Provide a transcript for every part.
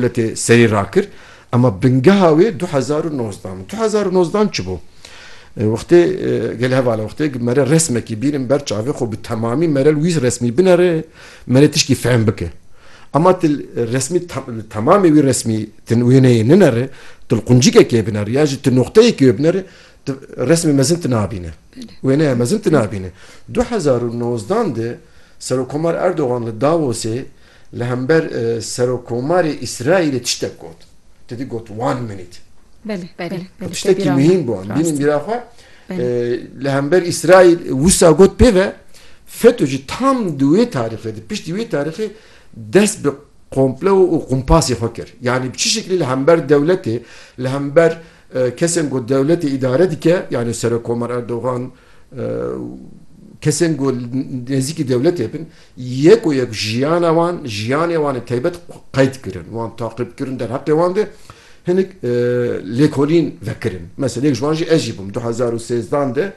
Li tê serî rakir ema bingeha wê du hezar û nozdeh in. Du hezar û nozdeh in çi bû? Wextê gelê heval e wextê ku me re resmekî bînin ber çavê xwe bi temamî me re li wî resmî binere me rê tişkî fehm bike. Ema tu resmî li temamê wî resmî tu wêneyê ninere tu li quncikekê binere ya jî tu noqteyekê wê binere tu resmê mezin tu nabîne. Wêneya mezin tu nabîne. Du hezar û nozdeh de Serokomar Erdogan li Davosê Li hember Serokomarê Îsraîlê tiştek got. Te dî got one minute. Belê. Belê. Belê. Tiştekî muhîm bû. Em bînin bîra xwe. Li hember Îsraîl wisa got pê ve feto jî tam di wê tarîxê di piştî wê tarîxê dest bi komplo û qumpasê xwe kir. Yanî bi çi şeklî li hember dewletê li hember kesên ku dewletê îdare dike yanî Serokomar Erdogan kesên ku li nêzîkî dewletê bin Yek û yek jiyana wan, jiyanê wan ê taybet qeyd kirin, wan taqîb kirin, derheqê wan de hinek lêkolîn vekirin. Mesela yek ji wan jî ez jî bûm. Du hezar û sêzdan de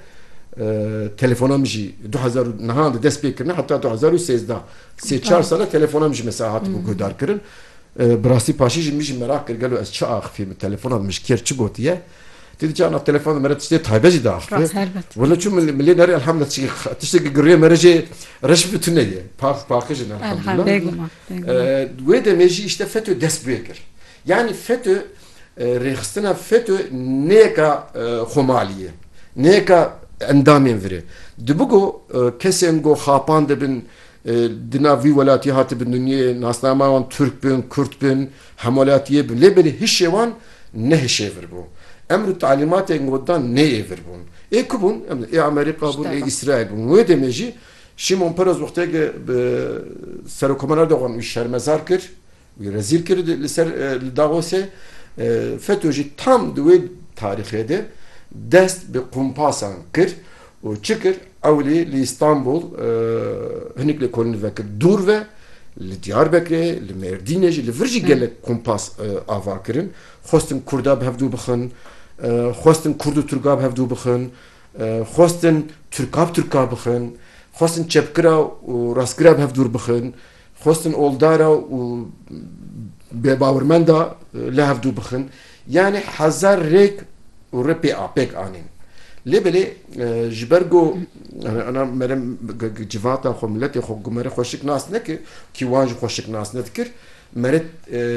telefona min jî du hezar û nihan de dest pê kirine heta du hezar û sêzda sê çar sal e telefona min jî mesela hatibû guhdarkirin. Bi rastî paşê jî min jî meraq kir gelo ez çi axifî min telefona min ji kê re çi gotiye. Ti di çanda telefon de me re tiştê taybet jî diaxivê. Wina çû min lê nerê elhamdulillah tiştê tiştê giriyê me re jê reş bi tune ye. Pak paqij in elhamdulillah. Bêguma. Wê demê jî îşte FETÖ dest pê kir. Yanî FETÖ rêxistina FETÖ neyeka xomalî ye. Neyeka endamên vir e. Dibi ku kesên ku xapan dibin di nav vî welatî hatibin dinyeyê nasnama wan Tirk bin, Kurd bin, Hemwelatiyê bi lê belê hişê wan ne hişê vir bû. Emr û talîmatên got dan nê yê vir bûn. Ê ku bûn? Ê Amerîka bûn, ê Îsraîl bûn. Wê demê jî Şimon Peres wexteke bi Serokkomarê Erdogan wî şermezar kir, wî rezîl kir li ser li Davosê. Feto jî tam di wê tarîxê de dest bi kompasan kir Û çi kir? Ewlî li Îstanbul hinek li kolin vekir dûr ve, li Diyarbekirê, li Mêrdînê jî, li vir jî gelek kompas ava kirin. Xwestin kurda bi hev dû bixin, xwestin kurd û turka bi hev dû bixin, xwestin turka bi turka bixin, xwestin çepkira û rastkira bi hev dûr bixin. Xwestin oldara û bêbawermenda li hev dû bixin, yanî hezar rêk û rê pê pêk anîn. Lê belê ji ber ku ana mere civata xwe, miletê xwe ku mere xwe şik nas neke, kî wan jî xwe şik nas nedikir, mere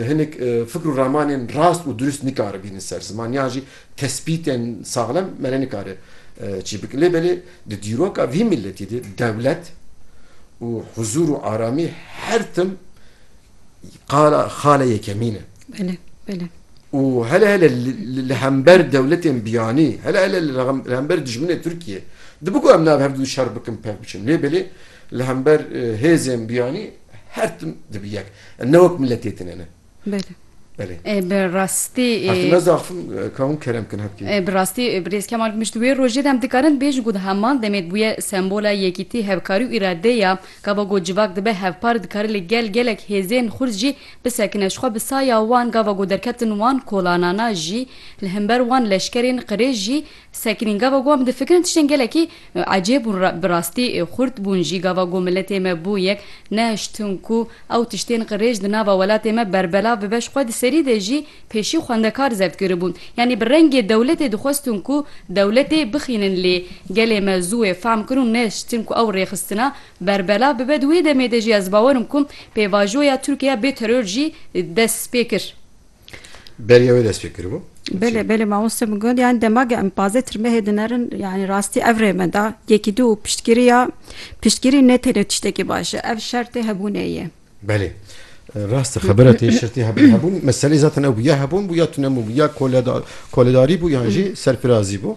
hinek fikr û ramanên rast û dirust nikaribînin ser ziman yan jî Tespîtên saxlem me re nikare çi bike. Lê belê di dîroka vî miletî de dewlet û huzûr û aramî her tim qala xala yekemîn e. Belê, belê. Û hele hele li hember dewletên biyanî, hele hele li hember dijminê Tirkiyê dibe ku em navê her du şer bikin pevk biçin. Lê belê li hember hêzên biyanî her tim dibe yek. Em ne wek miletê tune ne. Belê. Belê. E, bi rastî e, Her tu ne zaf ka hûn kerem bikin hevkê. e, bi rastî e, birêz Kemal Gumîş di wê rojê de em dikarin bêjin ku di heman demê dibûye sembola yekîtî, hevkarî û îradeyê ya. Gava ku civak dibe hevpar dikare li gel gelek hêzên xurt jî bisekine. Jixwe bi saya wan gava ku derketin wan kolanana jî li himber wan leşkerên qirêj jî Sekinîn gava ku em difikirin tiştên gelekî ecêb bûn, bi rastî xurt bûn jî. Gava ku miletê me bû yek, nehiştin ku ew tiştên qirêj di nava welatê me berbelav bibe ji xwe di serî de jî pêşî xwendekar zeft kiribûn. Yanî bi rengê dewletê dixwestin ku dewletê bixînin lê gelê me zû wê fehm kir û nehiştin ku ew rêxistina berbelav bibe. Di wê demê de jî ez bawer im ku pêvajoya Tirkiye ya bêteror jî dest pê kir. Beriya wê dest pê kiribû? Belê belê mamoste min got yani demagê em pazê tirmehê dinerin yani rastî ev rê me da yekî du û piştgiriya piştgirî ne tenê tiştekî baş e ev şertê hebûnê ye. Belê. Rast e xebira tê şertê hebûn hebûn meselê zaten ew bû ya hebûn bû ya tune bû ya koleda koledarî bû yan jî serpirazî bû.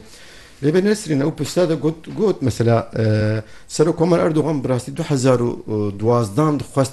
Lê be Nesrîn ew pirsda de got got mesela Serokomar Erdogan bi rastî du hezar û duwazdan dixwest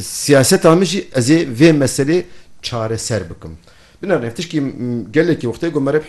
Siyaseta min jî ez ê vê meselê çareser bikim. Binêrin ev tişkî gelekî wextê ku me re bi